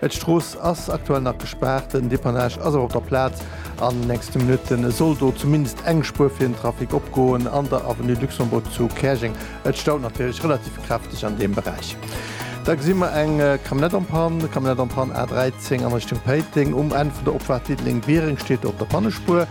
D'Strooss ass aktuell nach gespaart, den Depannage ass awer op der Plaz an den nächste Minutte soll do zumindest eng Spuer fir den Trafic opgoen an der Avenue Luxembourg zu Käerjeng. Et staut natierlech relativ kräfteg an deem Beräich. Da gesi mer eng Camionnette en panne, Camionnette en panne A13 an Richtung Péiteng. Um Enn vun der Opfahrt Diddeleng-Biereng steet do op der Pannespuer.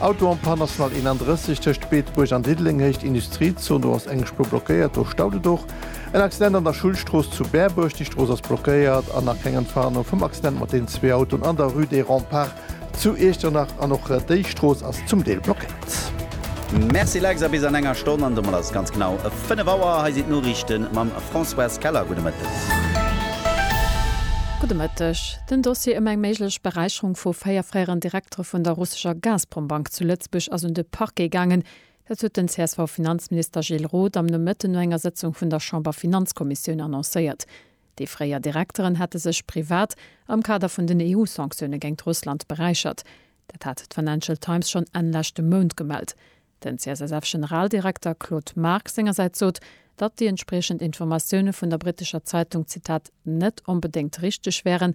Auto en panne, National 31 tëscht Beetebuerg an Diddeleng, Héicht Industriezon, do ass eng Spuer blockéiert, do staut et och. En Accident an der Schullstrooss zu Berbuerg, déi Strooss ass blockéiert an nach keng Entwarnung vum Accident mat den zwee Autoen an der Rue des Remparts zu Iechternach. An och déi Strooss ass zum Deel blockéiert. Merci Lex, a bis an enger Stonn, an domat ass et ganz genau 5 Auer. Hei sinn d'Noriichte mam Françoise Keller. Gudde Mëtteg. Gudde Mëtteg. Den Dossier ëm eng méiglech Beräicherung vu véier fréieren Direktere vun der russescher Gazprom-Bank zu Lëtzebuerg ass un de Parquet gaangen. Dat huet den CSV-Finanzminister Gilles Roth am Nomëtten no enger Sëtzung vun der Chamberfinanzkommissioun annoncéiert. Déi fréier Direkteren hätte sech privat am Kader vun den EU-Sanktioune géingt Russland beräichert. Dat hat d'Financial Times schonn Enn leschte Mount gemellt. Den CSSF-Generaldirekter Claude Margue sengersäits sot, datt déi entspriechend Informatioune vun der brittescher Zeitung, Zitat, net onbedéngt richteg wären,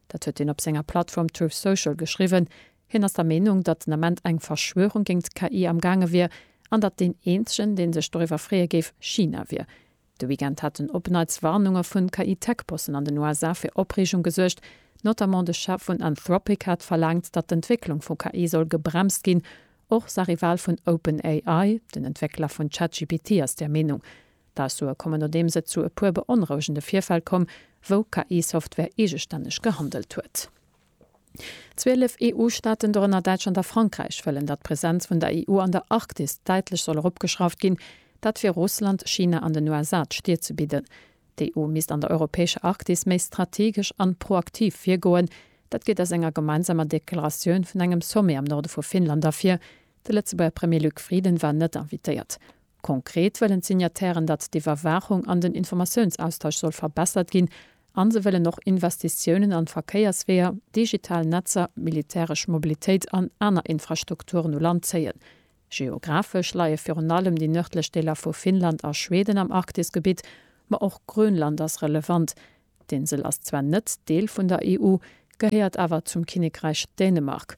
Dat huet hien op senger Plattform Truth Social geschriwwen. Hien ass der Meenung, datt den Ament eng Verschwörung géingt d'KI am gaange wier, an datt deen eenzegen, dee sech doriwwer freeë géif, China wier. De Weekend haten op neits Warnunge vun KI-Tech-Bossen an den USA fir Opreegung gesuergt. Notamment de Chef vun Anthropic hat verlaangt, datt d'Entwécklung vu KI soll gebremst ginn. Och Sahri Wahl vun OpenAI, den Entwéckler vun ChatGPT, ass där Meenung. D'Aussoe kommen nodeems et zu e puer beonrouegende Virfäll komm, wou KI-Software eegestänneg gehandelt huet. Zwielef EU-Staaten, dorënner Däitschland a Frankräich, wëllen, datt d'Presenz vun der EU an der Arktis däitlech soll eropgeschrauft ginn, dat fir Russland, China an den USA d'Stier ze bidden. D'EU misst an der europäescher Arktis méi strategesch an proaktiv virgoen. Dat geet aus enger gemeinsamer Deklaratioun vun engem Sommet am Norde vu Finnland ervir. De Lëtzebuerger Premier Luc Frieden war net invitéiert. Konkret wëllen d'Signatairen, datt d'Iwwerwaachung an den Informatiounsaustausch soll verbessert ginn a se wëllen och Investitiounen an Verkéiersweeër, digital Netzer, militäresch Mobilitéit an aner Infrastrukturen u Land zéien. Geographesch leie virun allem déi nërdlech Deeler vu Finnland a Schweden am Arktisgebitt, ma och Grönland ass relevant. D'Insel ass zwar net Deel vun der EU, gehéiert awer zum Kinnekräich Dänemark.